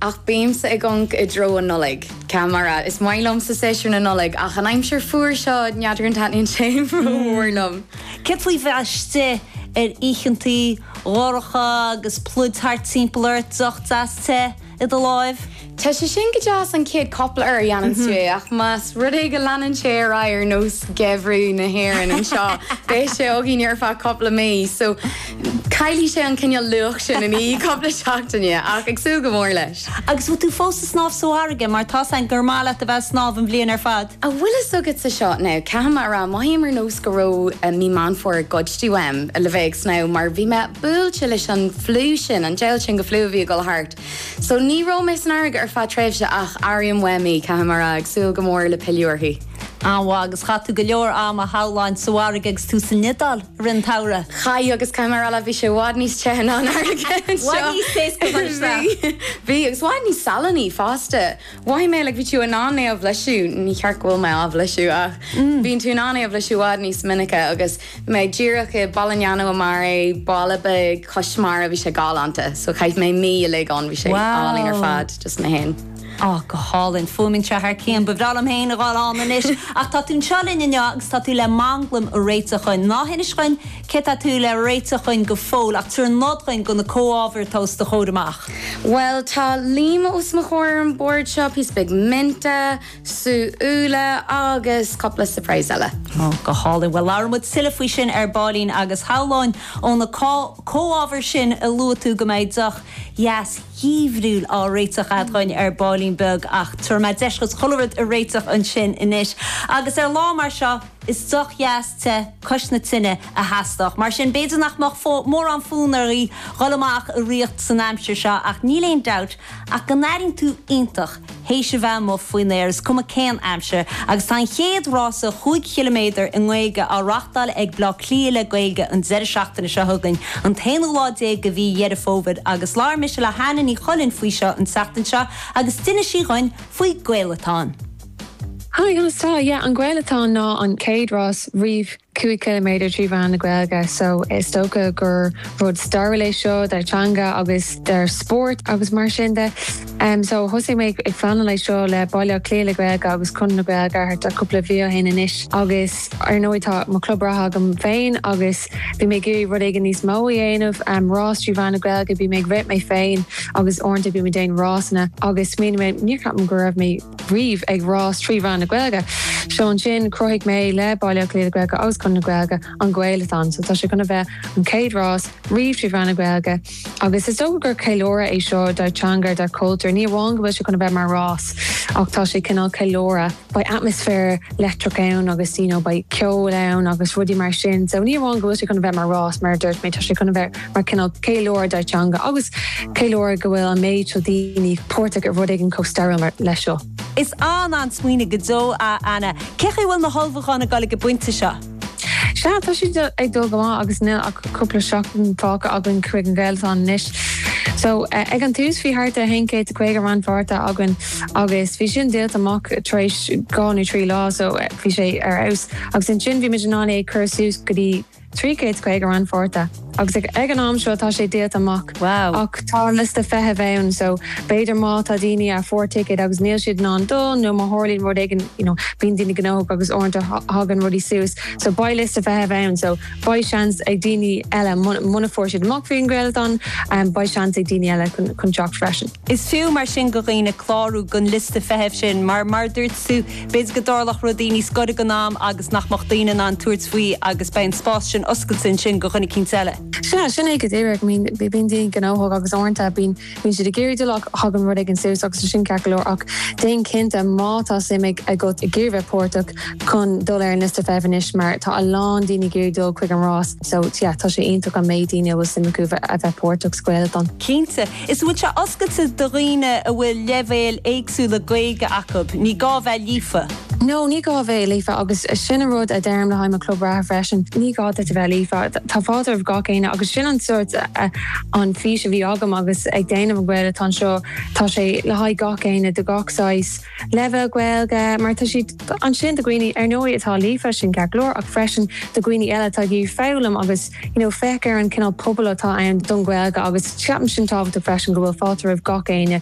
Ach bímse ag amharc i dtreo an Nollaig. Caithfidh mé a rá, is maith liomsa séasúr na Nollag ach an aimsir fuar seo, n'fheadar an dtaitníonn sé rómhór liom. Céard faoi bheith istigh ar oícheantaí dhorcha agus pluid thart timpeall ort, deoch deas te i do láimh? Tá sé sin go deas an chéad cupla uair a dhéanann tú é ach más rud é go leanann sé ar aghaidh ar nós gheimhreadh na hÉireann anseo beidh sé againn ar feadh cupla mí. So. Caillfidh sé an cineál luach sin i ndiaidh cupla seachtaine, ach ag súil go mór leis. Agus bhfuil tú fós ag snámh sa bhfarraige, mar tá a fhios agam gur maith leat a bheith ag snámh an bhliain ar fad? An bhfuil fhios agatsa seo, now, caithfidh mé a rá, mothaím ar nós go raibh mí Meán Fómhair goidte uaim le bheith ag snámh, mar bhí mé buailte leis an flu sin, an diabhal sin de flu a bhí ag dul thart. So, ní raibh mé san fharraige ar feadh tréimhse, ach airím uaim í, caithfidh mé a rá, ag súil go mór le pilleadh uirthi. An-mhaith. Agus chaith tú go leor ama a shamhlóinn sa bhfarraige agus tú san Iodáil. i rith an tsamhraidh. Chaith agus caithfidh mé a rá leat, bhí sé i bhfad níos te ná an fharraige anseo. I bhfad níos te, is cosúil, ná seo. Bhí, bhí, agus i bhfad níos salannaí fosta. Mhothaigh mé, like, bhí tú in ann é a bhlaiseadh, ní hé go bhfuil mé á bhlaiseadh ach bíonn tú in ann é a bhlaiseadh i bhfad níos minice agus bhí mé díreach i Polignano a Mare, baile beag cois mara, bhí sé galánta, so chaith mé mí uilig ann, bhí sé álainn ar fad, just mé fhéin. Ó, go hálainn. Fuaimeann sé thar cionn. Ba bhreá liom féin a ghabháil ann anois. Ach tá tú anseo linn inniu agus tá tú le manglaim a réiteach dhuinn. Ná hinis dhuinn céard atá tú le réiteach dhuinn go fóill, ach tabhair nod dhuinn go na comhábhair atá os do chomhair amach. Bhuel, tá líoma os mo chomhair ar an bord seo, píosa beag minte, sú úlla agus cupla surprise eile. Ó, go hálainn. Bhuel, labhróidh muid tuilleadh faoi sin ar baillín agus shamhlóinn ó na comhábhair sin a luaigh tú go mbeidh deoch dheas, dhifriúil á réiteach agat dhuinn ar baillín beag ach tabharfaidh mé deis dhuit chuile rud a réiteach ansin anois agus ar lá mar seo is deoch dheas te cois na tine a theastódh. Mar sin, b'fhéidir nach mbeadh mórán fonn oraibh dhul amach ag rith san aimsir seo ach níl aon dabht ach go n-airíonn tú iontach Théis a bheith amuigh faoin aer is cuma cén aimsir, agus tá an chéad rása cúig chiliméadar i nGaeilge á reáchtáil ag Bleá Cliath le Gaeilge an deireadh seachtaine seo chugainn, an t-aonú lá déag de mhí Dheireadh Fómhair, agus labhair mise le hÁine Ní Chuilinn faoi seo an tseachtain seo agus d'inis sí dhuinn faoin Gaelathon. Hi, conas tá? Yeah, an Gaelathon ná an chéad rás riamh 5 km trí mheán na Gaeilge so is dócha gur rud stairiúil é seo don teanga agus don spórt agus mar sin de so thosaigh mé ag pleanáil é seo le Baile Átha Cliath le Gaeilge agus Conradh na Gaeilge thart cúpla mhí ó shin anois agus ar ndóigh tá mo chlub reatha agam féin agus bhí mé ag iarraidh rud éigin níos mó a dhéanamh, rás trí mheán na Gaeilge, bím ag rith mé féin agus uaireanta bím ag déanamh rásanna agus smaoinigh mé, níor cheap mé go raibh riamh ag rás trí mheán na Gaeilge. So ansin chruthaigh mé le Baile Átha Cliath le Gaeilge agus Conradh na Gaeilge an Gaelathon. So tá sé chun a bheith an chéad rás riamh trí mheán na Gaeilge agus is dócha gur ceiliúradh é seo dár teanga, dár cultúr, ní amháin go bhfuil sé chun a bheith mar rás ach tá sé cineál ceiliúradh. Beidh atmaisféar leictreach ann agus you know beidh ceol ann agus rudaí mar sin so ní amháin go bhfuil sé chun a bheith mar rás mar a dúirt mé tá sé chun a bheith mar cineál ceiliúradh dár teanga agus ceiliúradh go bhfuil an méid seo daoine páirteach i rud éigin chomh stairiúil leis seo. Is an-an-smaoineamh go deo, a Anna. Cén chaoi a bhfuil na hullmhúcháin ag dul ag an bpointe seo? Sea, tá siad ag dul go maith agus níl ach cúpla seachtain fágtha againn chuig an Ghaelathon anois. So, ag an tús bhí thart ar aon chéad caoga rannpháirtí againn agus bhí sin díolta amach tar éis dhá nó trí lá so bhí sé ar fheabhas agus ansin bhí muid in ann é a chur suas go dtí 350 rannpháirtí agus ag ag an am seo tá sé díolta amach. Wow. Ach tá an liosta feithimh ann so b'fhéidir má tá daoine a fuair ticket agus níl siad in ann dul nó má tharlaíonn rud éigin you know bíonn daoine gnóthach agus uaireanta thagann rudaí suas so beidh liosta feithimh ann so beidh seans ag daoine eile muna fuair siad amach faoin Ghaelathon um, beidh seans ag daoine eile chun teacht freisin. Is fiú mar sin do dhaoine clárú don liosta feithimh sin mar mar dúirt tú B'fhéidir go dtarlódh rudaí níos gaire don am agus nach mbeadh daoine in ann tabhairt faoi agus beidh an spás sin oscailte ansin do dhuine eicínt eile. Sin é, sin é go díreach. I mean, bíonn daoine gnóthach agus uaireanta bíonn, bíonn siad ag iarraidh dul ach thagann rud éigin suas agus tá sin ceart go leor ach déan cinnte má tá suim ag, agat ag iarraidh bheith páirteach chun dul ar an liosta feithimh anois mar tá a lán daoine ag iarraidh dul chuig an rás so yeah tá sé iontach an méid daoine a bhfuil suim acu a bheith páirteach sa Ghaelathon. Cinnte. Is an bhfuil sé oscailte do dhaoine a bhfuil leibhéil éagsúla Gaeilge acu, ní gá a bheith líofa. No, ní gá a bheith líofa agus sin an rud a deirim le haghaidh mo chlub reatha freisin, ní gá duit a bheith líofa. Tá fáilte roimh gach éinne agus sin an sórt an fís a bhí agam agus ag déanamh an Ghaelathon seo, tá sé le haghaidh gach éinne, do gach saghas, leibhéal Gaeilge, mar tá siad. ansin do dhaoine, ar ndóigh, atá líofa, sin ceart go leor, ach freisin do dhaoine eile atá ag iarraidh foghlaim agus, you know, féach ar an cineál pobail atá ann don Ghaeilge agus ceapaim sin tábhachtach freisin go bhfuil fáilte roimh gach éinne